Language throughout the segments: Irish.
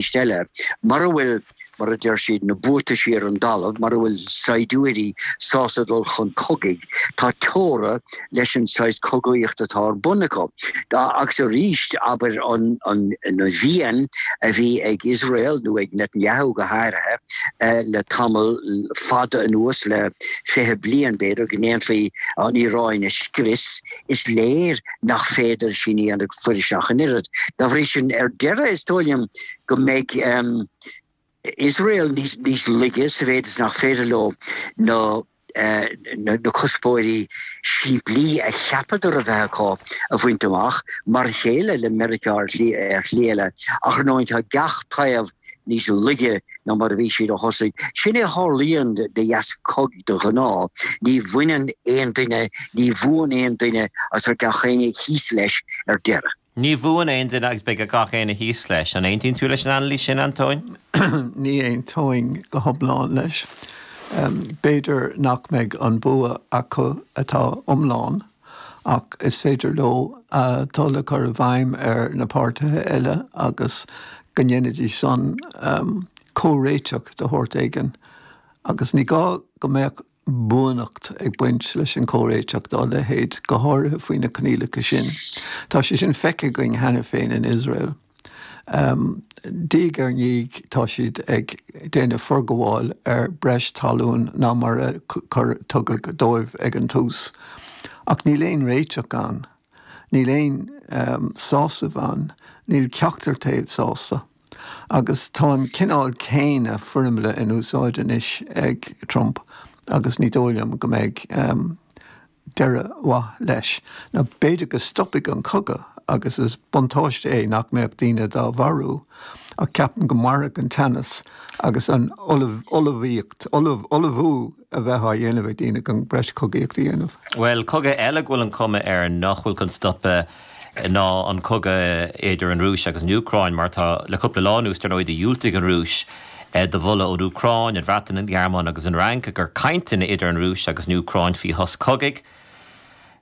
arís eile, mura bhfuil, mar a deir siad, na buataisí ar an dtalamh, mura bhfuil saighdiúirí sásta dul chun cogaidh, tá teora leis an saghas cogaíocht atá ar bun acu. Agus arís, abair, an mhian a bhí ag Iosrael, nó ag Netanyahu go háirithe, le tamall fada anuas, le fiche bliain b'fhéidir, go ndéanfaí an Iaráin a scrios, is léir nach féidir sin a dhéanamh fuirist ach an oiread. Dá bhrí sin, ar deireadh, is dóigh liom go mbeidh Iosrael níos laige sa mhéid is nach féidir leo na cuspóirí simplí a cheapadar a bheith acu a bhaint amach, mar a chéile le Meiriceá ar shlí eile, ach ar ndóigh tá gach taobh níos laige ná mar a bhí siad ó thosaigh. Sin é a tharlaíonn de dheasca cogaidh de ghnáth. Ní bhaineann aon duine, ní bhuann aon duine agus beidh gach éinne thíos leis ar deireadh. Ní bhuann aon duine agus beidh gach éinne thíos leis. An aontaíonn tú leis an anailís sin, Antóin? Ní aontóinn go hiomlán leis. B'fhéidir nach mbeidh an bua acu atá iomlán ach is féidir leo a dtoil a chur i bhfeidhm ar na páirtithe eile agus go ndéanfaidís san comhréiteach de shórt éigin, agus ní gá go mbeadh buanacht ag baint leis an gcomhréiteach dá leithéid, go háirithe faoi na coinníollacha sin. Tá sé sin feicthe againn cheana féin in Iosrael. Diaidh ar ndiaidh tá siad ag déanamh forghabháil ar breis talún ná mar a tugadh dóibh ag an tús. Ach níl aon réiteach ann. Níl aon sásamh ann. Níl ceachtar taobh sásta. Agus tá an cineál céanna foirmle in úsáid anois ag Trump agus ní dóigh liom go mbeidh. deireadh mhaith leis, ná b'fhéidir go stopfaidh an cogadh, agus is buntáiste é nach mbeadh daoine dá marú, ach ceapaim go mairfidh an teannas agus an ullmhaíocht, ullmhú a bheith á dhéanamh ag daoine chun breis cogaíocht a dhéanamh. Bhuel, cogadh eile go bhfuil an cuma air nach bhfuil chun stopadh. ná an cogadh idir an Rúis agus an Úcráin, mar atá le cúpla lá anuas. Dar ndóigh, dhiúltaigh an Rúis do mholadh ón Úcráin, an Bhreatain, an Ghearmáin agus an Fhrainc i gcomhair cainteanna idir an Rúis agus an Úcráin faoi shos cogaidh.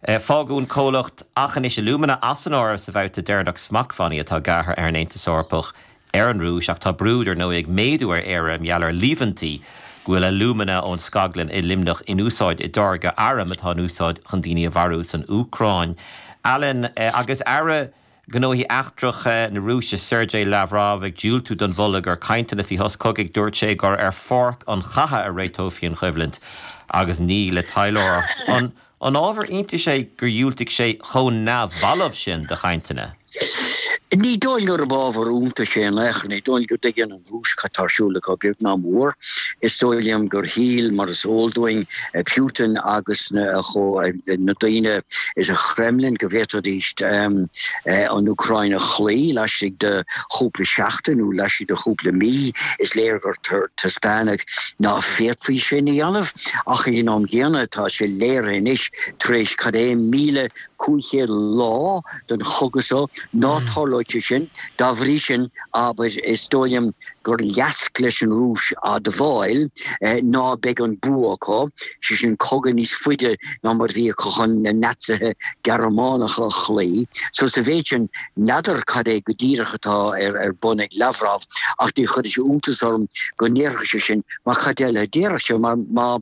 Fágadh an comhlacht Aughinish Alumina as an áireamh sa bhabhta deireanach smachtbhannaí atá gearrtha ag an Aontas Eorpach. ar an Rúis, ach tá brú, dar ndóigh, ag méadú ar Éire mar gheall ar líomhaintí go bhfuil alúmana ón scaglann i Luimneach in úsáid i dtáirgeadh arm atá in úsáid chun daoine a mharú san Úcráin. Alan, Agus Aire Gnóthaí Eachtracha na Rúise, Sergei Lavrov, ag diúltú don mholadh i gcomhair cainteanna faoi shos cogaidh, dúirt sé gur ar pháirc an chatha a réiteofaí an choimhlint agus ní le taidhleoireacht. An ábhar iontais é gur dhiúltaigh sé chomh neamhbhalbh sin do chainteanna? Ní dóigh liom gurb ábhar iontais é in aon chor. Ní dóigh liom go dtuigeann an Rúis cad tá ar siúl acu, beag ná mór. Is dóigh liom gur shíl, mar is eol dúinn, Putin agus na daoine sa Khremlin go bhféadfaidís an Úcráin a chloí laistigh de chúpla seachtain nó laistigh de chúpla mí. Is léir gur taispeánadh Ná féadfaí sin a dhéanamh, ach ag an am gcéanna tá sé léir anois tar éis cad é 1,500 lá den chogadh so, ná tarlóidh sé sin, dá bhrí sin, abair, is dóigh liom gur leasc leis an Rúis admháil ná beidh an bua acu, sé sin cogadh níos faide ná mar a bhí acu chun na Naitsithe Gearmánacha a chloí. So sa mhéid sin, N'fheadar cad é go díreach atá ar bun ag Lavrov, ach ní chuirfeadh sé iontas orm go ndéarfadh sé san, mar cad eile a déarfadh sé? Mar má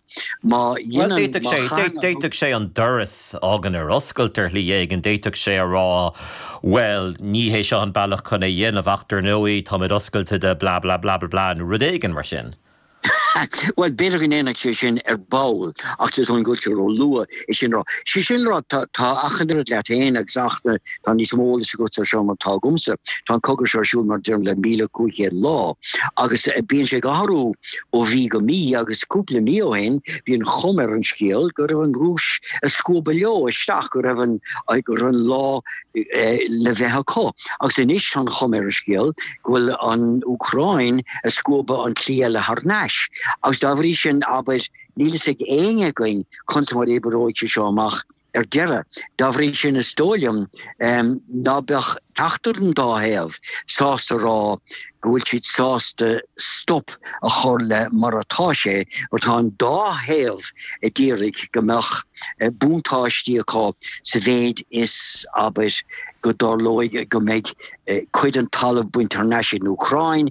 dhéanann, má chaitheann an. D'fhéadfadh sé an doras a fhágaint ar oscailt ar shlí éigin, d'fhéadfadh sé a rá, bhuel, ní hé seo an bealach chun é a dhéanamh, ach dar ndóigh, táimid oscailte do blah blah blah blah blah, nó rud éigin mar sin. Bhuel, b'fhéidir go ndéanfadh sé sin ar ball, ach tá sé i bhfad ró-luath é sin a rá, sé sin a rá, tá, tá achan oiread leat féin agus achan oiread, tá níos mó eolais agat ar seo ná tá agamsa. Tá an cogadh seo ar siúl, mar a deirim, le míle cúig chéad lá, agus bíonn sé ag athrú ó mhí go mí, agus cúpla mí ó shin, bhí an chuma ar an scéal go raibh an Rúis ag scuabadh leo isteach, go raibh an, go raibh an lá le bheith acu. Agus anois tá an chuma ar an scéal go bhfuil an Úcráin ag scuabadh an tslí eile thar nais. Agus dá bhrí sin, abair, níl fhios ag éinne againn conas mar a oibreoidh sé seo amach ar deireadh. Dá bhrí sin, is dóigh liom ná beadh ceachtar den dá thaobh sásta a rá go bhfuil siad sásta stop a chur le mar atá sé, mar tá an dá thaobh ad iarraidh go mbeadh. buntáistí acu sa mhéid is, abair, go dtarlóidh go mbeidh cuid den talamh bainte thar n-ais ag an Úcráin,